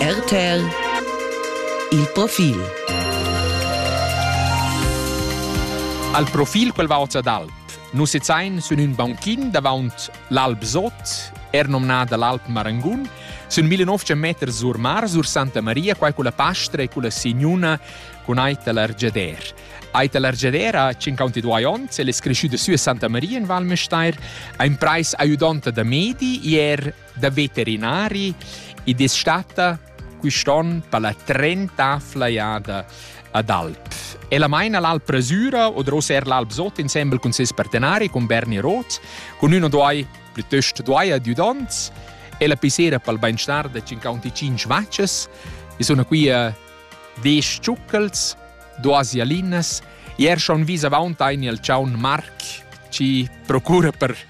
RTL Il profil Al profil quel va oz ad alp. Nus sezain sün ün bankin davant l'Alp Sot, er nomnada l'Alp Marangun, sün 1900 meter sur mar, sur Santa Maria, quai con la pastra e con la signuna con aita l'Argiader. Aita l'Argiader ha 52 ons, el es creschüda sü a Santa Maria in Val Müstair, ha in preis aiudonta da medi e er da veterinari ed es stata quist'on per la trenta flaiada ad Alp. Ella maina l'Alp Rasura oder ossa er l'Alp Sot insembel cun ses partenari, con Berni Roth, con ün o doi, plütöst doi adüdonts, e la pisera pel bainstar da 55 vacces, e sono qui a 10 ciuccels, duas ialinas, e er schon vis avaunt ein il ciaun Marc, ci procura per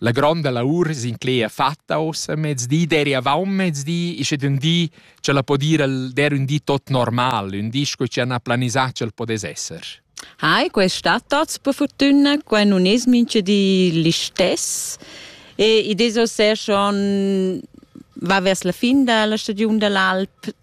La gronda lavur s'inclegia fatta ussa mezdi d'eri avon mezdi, ische d'ün di cha la po dir el der ün di tot normal, ün di sco chi han planisà ch'el podess esser. Hai, quest sta tots per fortuna, qua non es mincha di l'istess e i deso ser schon va vers la fin da la stagiun da l'alp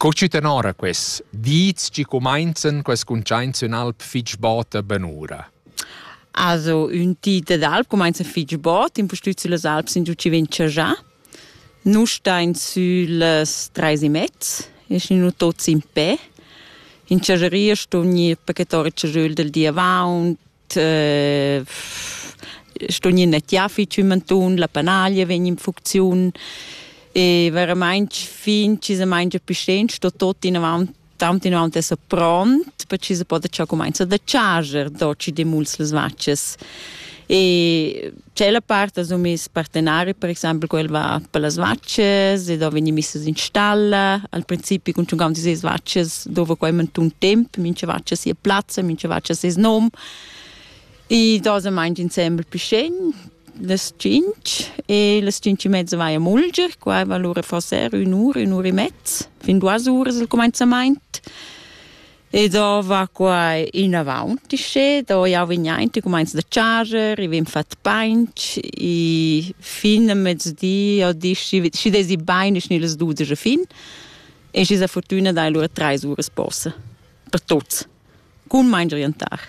Co tü tenora quels dis chi cumainzan quest cuntschaints in alp fich bota benura? Also, ün di d'alp cumainza fich bot, impustüt süllas alps in giù chi vegn chajà. Nus stain süllas trais e mezz, eschin nu tuots in pè. In chageria ston gnir pachetà il chajöl del di avaunt, sto gnir nettiafi tschümentun, la panaglia vegn in funcziun e veramaing fin chi se mangia più sten sto tot inavant tant inavant esser pront per chi se poda cià cumainza da charger do ci de muls las vaccias e Tschella part ha miss partenari, per exempel quel va per las vaccias e da vegnir missas in stalla. Al principi con tschuncaun dis vaccias dova quai mantun temp, mincha vaccia sia plazza, mincha vaccia ses nom. E da se mangia insembel pischegn, las cinc e las cinc e mezza vai a mulger, qua va lura forse ür ura, ün ura e mezz, fin duas uras il cumenzament. E do va quai inavant uschè, do jau vegn aint, i cumainza da charger, i vegn fat painch, i fin a mezdi o di, schi, schi desi bain, schi las dudesch fin. E schi sa fortüna dai lura trais uras posa, per tuots, cun main orientar.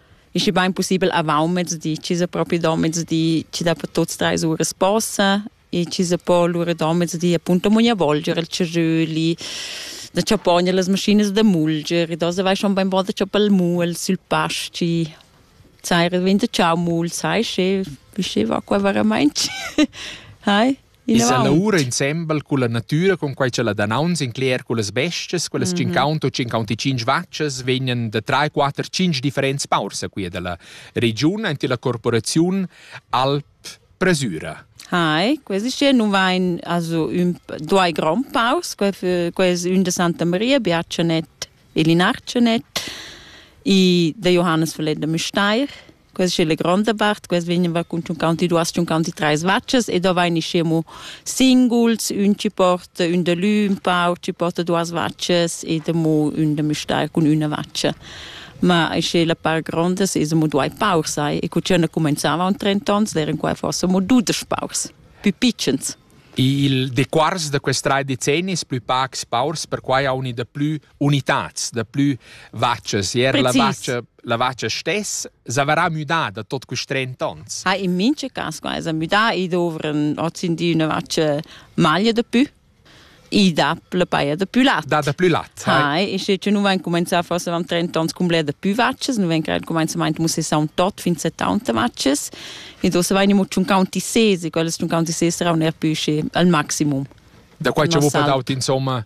ist bain possibel avant mezdi, ci se proprio do mezdi, ci da per tuts drei ure sposa e ci se po lura do mezdi appunto mogna volgere il ceröli da chapogne las machines da mulger e da se vai schon beim bod da chapel mul sul pasci sai red vinte ciao mul sai che bisce va qua veramente hai I sa lavura insembel culla natüra con quai cha la danaunz incler cullas bestias, quelles mm -hmm. 50 o 55 vaccias vegnan da 3, 4, 5 differents paurs a quia da la regiun ante la corporaziun Alp Presura. Hai, questi hier nun vain also ün due grand paus, ques ün de Santa Maria, Biacenet e Linarcenet, i de Johannes Verleder Müsteir, Questa è la grande part, questa veniva con 52-53 vacces e da vain ischiamo singuls, ün ci porta ün de lü un pau, ci porta duas vacces e de mo ün de müstar cun üna vacce. Ma isce la par grandes es mo duai paur sai e cu cena comenzava un 30 ans eran qua forse mo dudesch paurs, più piccens. Il dequars da quest rai decennis plü pacs paurs perquai haun i da plü unitads da plü vachas. Er la vacha, la vacha stess s'averà müdà da tot quist 30 ans. Ha in minche cas qua s'ha müdà i dovran hozindi üna vacha maglia da pü i dà la paia da plü lat. Da da plü lat. Hai, e sche nu vain cumanzà forse avant 30 ans cum bler da plü vachas, nu vain creat cumanzamaint mussessà un tot fin 70 vachas, e do se vain imo tschun counti sesi, quelle tschun counti sesi serà un er pü schi al maximum. Da quai ci vuo per daut insomma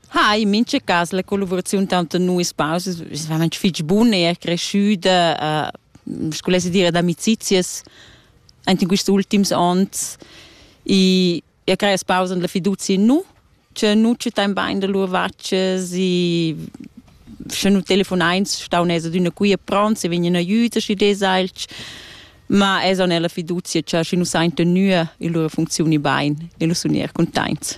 Ha in mincha cas la collaboraziun tanto nuis pausas es veramente fich bun, è er cresciuta, uh, sco lesse dire, d'amicizias anche in questi ultimi anni e e crea pausa la fiducia in nu che nu ci tan bain da lur vacces e se nu telefonain stau nesa d'una qui e pronti vegni in aiuto si desailch ma es on la fiducia che si nu sain tenue in lur funzioni bain e lu sun er contents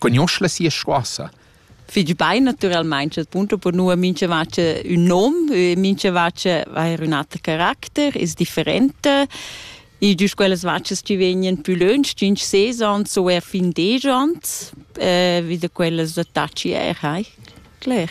cugnuosch la sia scoassa. Figl bein naturalmein chat punto per nua mincha vacha ün nom, mincha vacha ha ün ater caracter, es differenta. Il gius quellas vachas chi vegnan pü lönch, tschinch ses ans o eir fin desch ans, vi da quellas attacchi eir, hai, cler.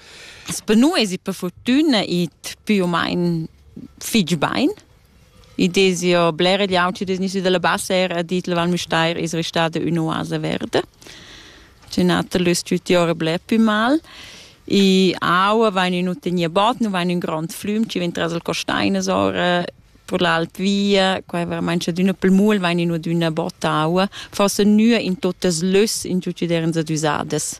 Sper nu esi per furtüna it più o main fich bain. I desi jo bler egl auti degnüsi da la bassa era a dit la Val Müstair es restada ün'oasa verda. Tü nater l'es tü tiora bler pü mal. I aua vain ün tegna bot, nu vain ün grond flüm chi vegn tras il costainas ora per l'alt via, qua è veramente cioè d'una pel mul vain in d'una botta aua, forse nua in tuttas lös in tutti derens adüsadas.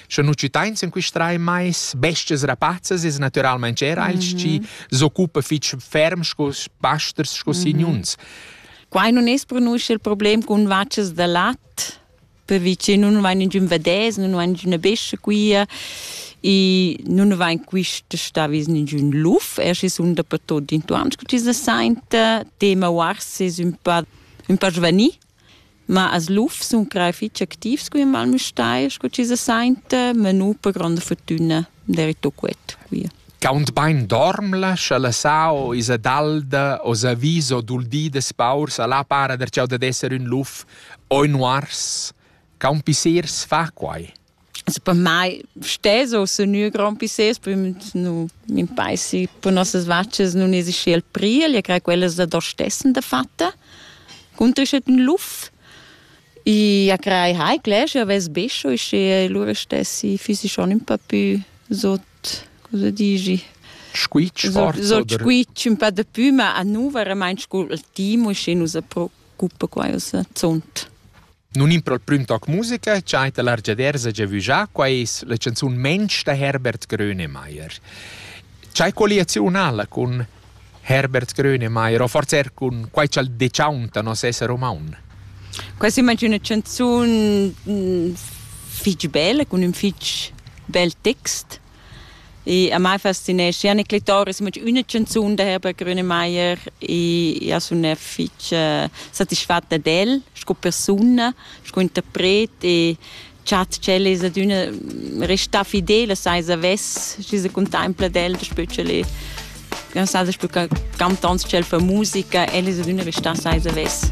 Sche nu citains in quist rai mais bestias rapazzas es natüralmaing era els mm -hmm. chi s'occupa fich ferm sco pasters sco mm -hmm. signuns. Quai non es pronunzia il problem cun vacas da lat, perché nun vain ingün vedès, nun vain ingüna bescia quia e nun vain quist sta vis ingün luf, er schi sun dapertot intuans che ci se sainta, tema uars es ün pa ün pa giovanil Ma as lufs sun crei fich activs cu in Val Müstair, scu chi se sainta, ma nu per gronda furtüna derito quet quia. Gaunt bain dormla, scha la sao isa dalda o sa vis o dul di da spaurs, a là para der chau dad esser ün luf o ün uars. Caun pissers fa quai. Se per mai stes o se nu grand pisses, poi nu m'impeisi per nossas vaccias nun esi schi al priel, io crei quellas da do stessen da fatta. Cuntrischet ün luf e a crei hai clers, io ves bescio e schi lura stessi füsi schon ün pa pü sot, cosa digi? Squitsch forz? Sot squitsch ün pa dapü, ma a nu veramaing scu il timo, schi nu sa pro gruppa quai uss zunt. Nun in prol prüm toc musica cha ta l'argiadersa già vüjà, qua es la chanzun Mensch da Herbert Grönemeyer. C'hai colliaziun ala cun Herbert Grönemeyer o forse er cun quai cha'l dechauntano nos esser umaun? Quai s'immagina üna chanzun fich bella, cun ün fich bel text Ich, am Mai faszinesci anche Clitoris, ma una canzone da Herbert Grönemeyer e ha una fece soddisfatta del, sco persona, sco interpret e chat c'è es ad una resta fidele, sai s'avess, ci se contempla del, specie le non sa, spui cantants c'è fa musica, e es ad una resta sai s'avess.